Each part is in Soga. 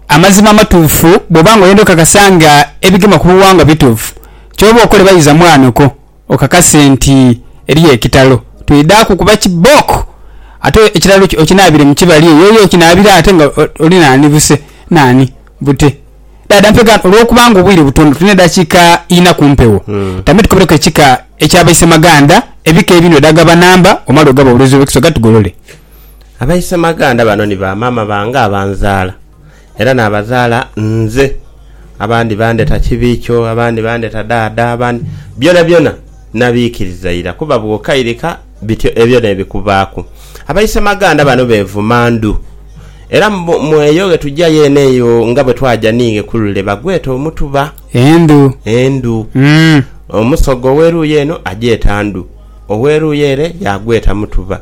Amazima amatuufu, Bw'oba nga oyenda okakasa nga ebigema ku buwangwa bituufu, ky'oba okole baiza mwanhuko okakase nti eriyo ekitalo. Twidhaaku kuba kibooko ate ekitalo kyo okinaabire mu kibali eyo yo okinaabire ate nga oli naani buse naani bute. Dhaadha mpegaano olw'okuba nga obwire butono tulina edhakiika inha ku mpewo, tambe tukobereku ekika ekya Baisemaganda, ebika ebindhi odhaagaba namba omale ogaba obulozi obw'ekisoga tugolole. Abaisemaganda bano ni ba maama bange abanzaala era n'abazaala nze. Abandi bandheta Kibiikyo, abandi bandheta Dhaadha, abandi. Byonabyona nabiikiriza ira kuba bw'okairika bityo ebyo n'ebikubaaku. Abaisemaganda bano beevuma ndhu era mu eyo ghe tuja yeene eyo nga bwe twaja ni Ng'ekulule bagweta omutuba. Endhu. Endhu. Omusoga ow'eruuyi eno agyeta ndhu, ow'eruuyi ere yaagweta mutuba.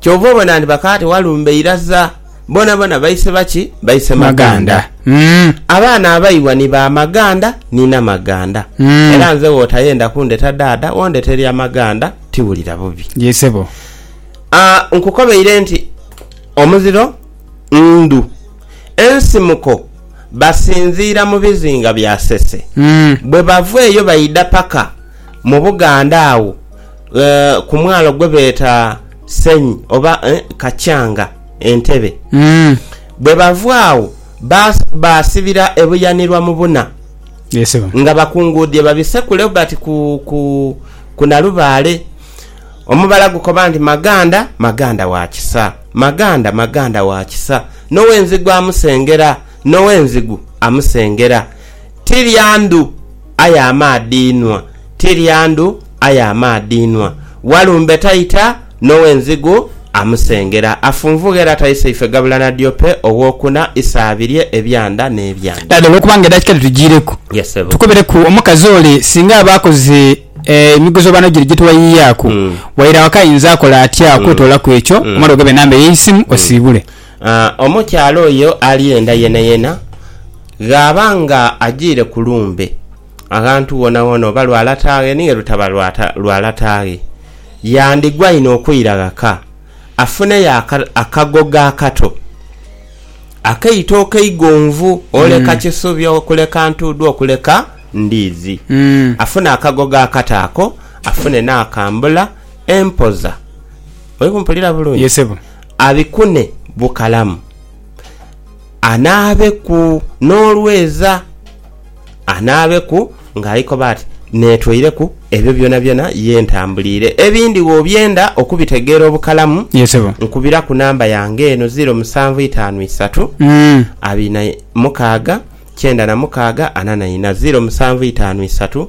Kyova obona nti bakaate walumbe iraza bonabona baise baki? Baise maganda. Abaana abaibwa ni ba maganda ni namaganda. Era nze wotayenda kundeta daada wondete lya maganda tiwulira bubi. Yee sebo. Aah nkukobeire nti omuziro ndhu. Ensimuko basinziira mu bizinga bya Sese. Bwebava eyo baidha paka. Mu Buganda agho ku mwalo gwe beeta Senyi oba Kakyanga Entebe. Bwe bava agho baasibira e Buyanirwa mu buna nga bakunguudhie babisekule bati ku Nalubaale. Omubala gukoba nti, Maganda, Maganda wa kisa, Maganda, Maganda wa kisa, n'ow'enzigu amusengera, n'ow'enzigu amusengera, ti lya ndhu. aye amaadhi inhwa, ti lya ndhu, aye amaadhi inhwa. Walumbe taita, n'ow'enzigu amusengera. Afunvugha era taisa ife gabula na diope ow'okuna, isa abirye ebyanda n'ebyanda. Dhala olw'okuba nga edakika dhitujiireku, Yes sebo. tukobereku omukazi ole singa aba akoze emigozoobano gire gye twayiyaaku. Waire awaka ayinza akola atya okwetoola ku ekyo? Omale ogabe enamba ye y'eisimu osiibule. Omukyala oyo alyenda yenayena ghaba nga ajiire ku lumbe, aghantu ghonhaghonha oba lwa lataaghe ni werutaba lwa lataaghe, yandigwa inho okwira ghaka afuneyo akagogo akato akaitooke eigonvu okuleka Kisubi, okuleka Ntuudhu, okuleka Ndiizi. Afune akagogo akato ako, afune n'akambula empoza. Oli kumpulira bulungi? abikune bukalamu, anaabeku n'olweza, anaabeku ng'ali koba ati, Neetweireku ebyo byonabyona ye ntambuliire. Ebindi bw'obyenda okubitegeera obukalamu, Ye sebo. nkubiraku namba yange eno, ziiro musanvu itaanu isatu, Mm. abiri na mukaaga, kyenda na mukaaga, ana na ina. Ziiro musanvu itaanu isatu,